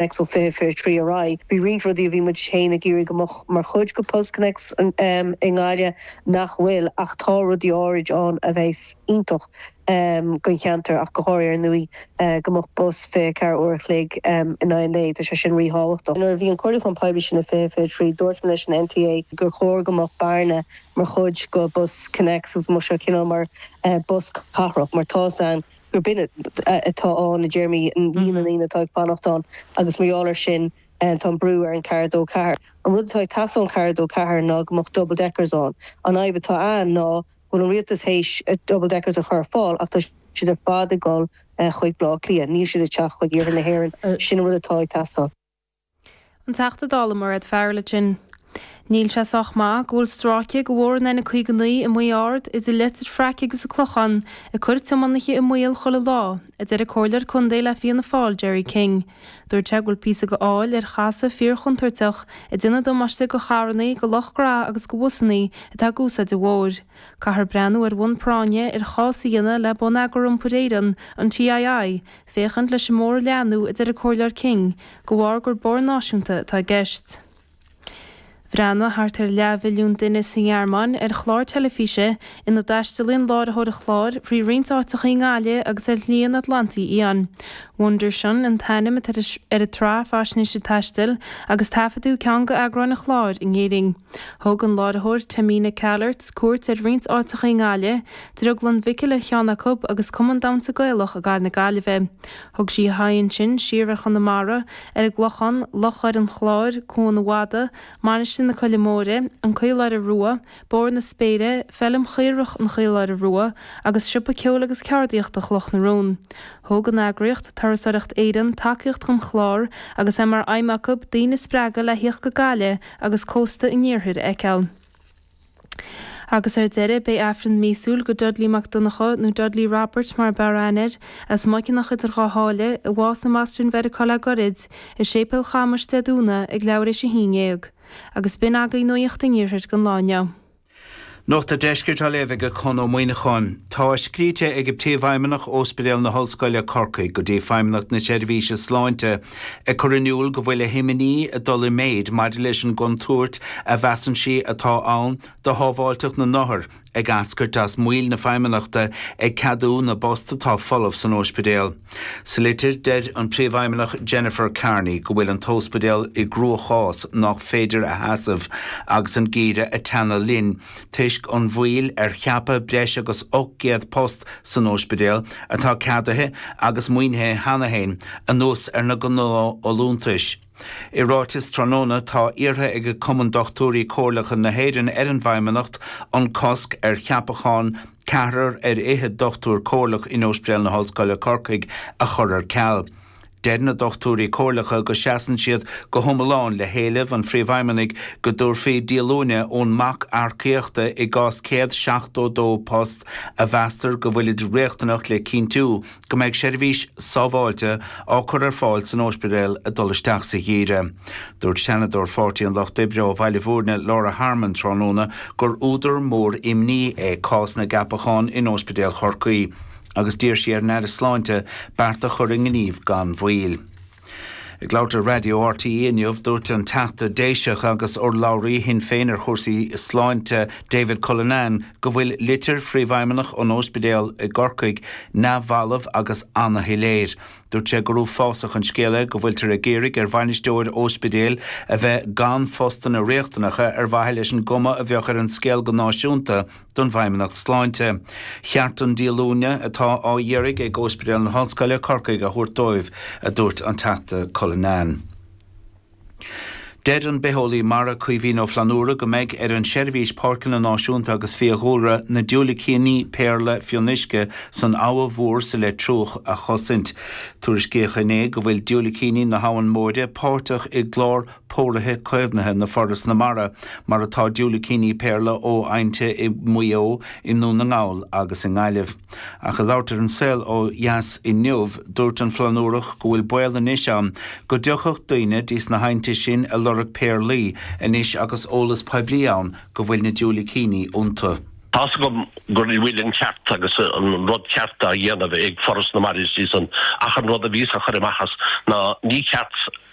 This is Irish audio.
Ó 20, 23 ar aghaidh. Bhí roinnt rudaí a bhí muid féin ag iarraidh go mbeadh mar chuid go Bus Connects i nGaillimh nach bhfuil ach tá rudaí áirid ann a bheas iontach don cheantar ach go háirithe ar ndóigh go mbeadh bus 24 uair a chloig in aghaidh an lae, tá sé sin ríthábhachtach. Nuair a bhí an comhairliúchán poiblí sin i 20, 23, dúirt mé leis an NTA gur chóir go mbeadh Bearna mar chuid go bus Connects agus go mbeadh sé cineál mar bus cathrach mar tá san gurb in atá ann, i dtéarmaí líon na ndaoine atá ag fanacht ann agus mar gheall air sin tá an brú ar an 4-2-4. An rud atá ag teastáil ón 4-2-4 ná go mbeadh double deckers ann. An fhadhb atá ann ná go bhfuil an rialtas théis double deckers a chur ar fáil ach tá siad ar fad ag dul chuig Baile Átha Cliath, níl siad ag teacht chuig iarthar na hÉireann, sin an rud atá ag teastáil. An Teachta Dála Mairéad Farrell ansin. Níl sé sách maith go bhfuil stráice go bhóthar an N59 i Maigh Ard, idir Leitir Fraic agus an Clochán, ag cur tiománaithe i mbaol chuile lá, a deir an Comhairleoir Contae le Fianna Fáil Gerry King. Dúirt sé go bhfuil píosa go fál ar chasadh fíorchontúirteach ag déanamh damáiste go carrannaí, go leoraíos agus go bhusannaí atá ag úsáid an bhóthair. Caithfear breathnú ar bhonn práinne ar chás a dhéanamh le Bonneagar Iompair Éireann, an TII, féachaint leis an mbóthar a leathnú, a deir an Comhairleoir King, de bharr gur bóthar náisiúnta atá i gceist. Bhreathnaigh thart ar leathmhilliún duine sa nGearmáin ar chlár teilifíse ina dtaistealaíonn an láithreoir an chláir frí roinnt áiteacha i nGaillimh agus ar Shlí an Atlantaigh Fhiáin. Wunderschön an t-ainm atá ar an tsraith faisnéise taistil agus taifeadadh ceann d'eagráin an chláir in Éirinn. Thug an láithreoir Tamina Kallert cuairt ar roinnt áiteacha i nGaillimh, Drioglann Mhicil ar cheann acu agus Cumann Damhsa Gaelach i gCathair na Gaillimhe. Thug sí a haghaidh ansin siar ar Chonamara, ar an gClochán, Loch Dhoire an Chláir, Cúr an Fhata, Mainistir na Coille Móire, An Caoláire Rua, Bóthar na Spéire, Feilm Chaorach an Chaoláire Rua agus Siopa Ceoil agus Ceardaíochta Chloch na Rón. Thug an eagraíocht, Turasóireacht Éireann, tacaíocht don chlár agus é mar aidhm acu daoine a spreagadh le thíocht go Gaillimh agus cósta an iarthair a fheiceáil. Agus ar deireadh, beidh Aifreann míosúil go Dudley Mac Donnchadha, nó Dudley Robert mar a b'fhearr aithne air, as Muiceanach idir Dhá Sháile, a bhásaigh i mBoston Mheiriceá le goirid, i Séipéal Chamais, Dé Domhnaigh, ag leathuair théis a haon dhéag. Agus b'in agaí nuaíocht an Iarthair don lá inniu. Nuacht a' Deiscirt á léamh ag Conn Ó Muimhneacháin. Tá scríte ag Príomhfheidhmeannach Óspidéal na hOllscoile, Corcaigh, go dtí Feidhmeannacht na Seirbhíse Sláinte, ag cur in iúl go bhfuil a himní ag dul i méid maidir leis an gcontúirt a mheasann sí atá ann do shábháilteacht na n-othar ag eascairt as moill na Feidhmeannachta ag ceadú na bpost atá folamh san óispidéal. Sa litir, deir an Príomhfheidhmeannach Jennifer Kearney go bhfuil an t-óspidéal i gcruachás nách féidir a sheasamh agus an geimhreadh ag teannadh linn. toisc an mhoill ar cheapadh breis agus 800 post san óispidéal, atá ceadaithe agus maoinithe cheana féin, anuas ar na gnáthfholúntais. I ráiteas tráthnóna, tá iarrtha ag Cumann Dochtúirí Comhairleacha na hÉireann ar an bhFeidhmeannacht an cosc ar cheapachán ceathrar ar fhichead dochtúir comhairleach in Óispidéal na hOllscoile Corcaigh a chur ar ceal. Deir na dochtúirí comhairleacha go seasann siad go hiomlán le héileamh an Phríomhfheidhmeannaigh go dtabharfaí díolúine ón mbac earcaíochta i gcás 172 post a mheastar go bhfuilid riachtanach le cinntiú go mbeidh seirbhís sábháilte á cur ar fáil san óispidéal ag dul isteach sa gheimhreadh. Dúirt Seanadóir Pháirtí an Lucht Oibre ó Bhaile Bhúirne Laura Harmon tráthnóna gur údar mór imní é cás na gceapachán in Óispidéal Chorcaí. agus d'iarr sí ar an Aire Sláinte beart a chur i ngníomh gan mhoill. Ag labhairt ar Raidió RTÉ inniu, dúirt an Teachta Déiseach agus urlabhraí Shinn Féin ar chúrsaí sláinte, David Cullinane, go bhfuil litir phríomhfheidhmeannach an óispidéal i gCorcaigh neamhbhalbh agus ana-shoiléir. Dúirt sé gur uafásach an scéal é go bhfuiltear ag iarraidh ar bhainisteoir óispidéil a bheith gan phostanna riachtanacha ar mhaithe leis an gcuma a bheadh ar an scéal go náisiúnta, don bhFeidhmeannacht Sláinte cheart an díolúine atá á iarraidh ag Óspidéal na hOllscoile, Corcaigh, a thabhairt dóibh, a dúirt an Teachta Cullinane. Deir an bitheolaí mara Caoimhín Ó Flannúra go mbeidh ar an tSeirbhís Páirceanna Náisiúnta agus Fiadhúlra na diúilicíní péarla fionnuisce san Abha Mhór sa Leitriúch a chosaint. Tuairiscíodh inné go bhfuil diúilicíní na hAbhann Móire páirteach i gclár póraithe caomhnaithe na Foras na Mara, mar atá diúilicíní péarla ó aibhnte i Maigh Eo, i nDún na nGall agus i nGaillimh. Ach ag labhairt ar An Saol ó Dheas inniu, dúirt an Flannúrach go bhfuil baol anois ann go dtiocfadh daoine dtíos na haibhnte sin ag lorg péarlaí anois agus eolas poiblí ann go bhfuil na diúilicíní iontu. Tá's agam go bhfuil an ceart agus an rud ceart á dhéanamh ag Foras na Mara is iadsan ach an rud a bhíos á chur amach as ná ní ceart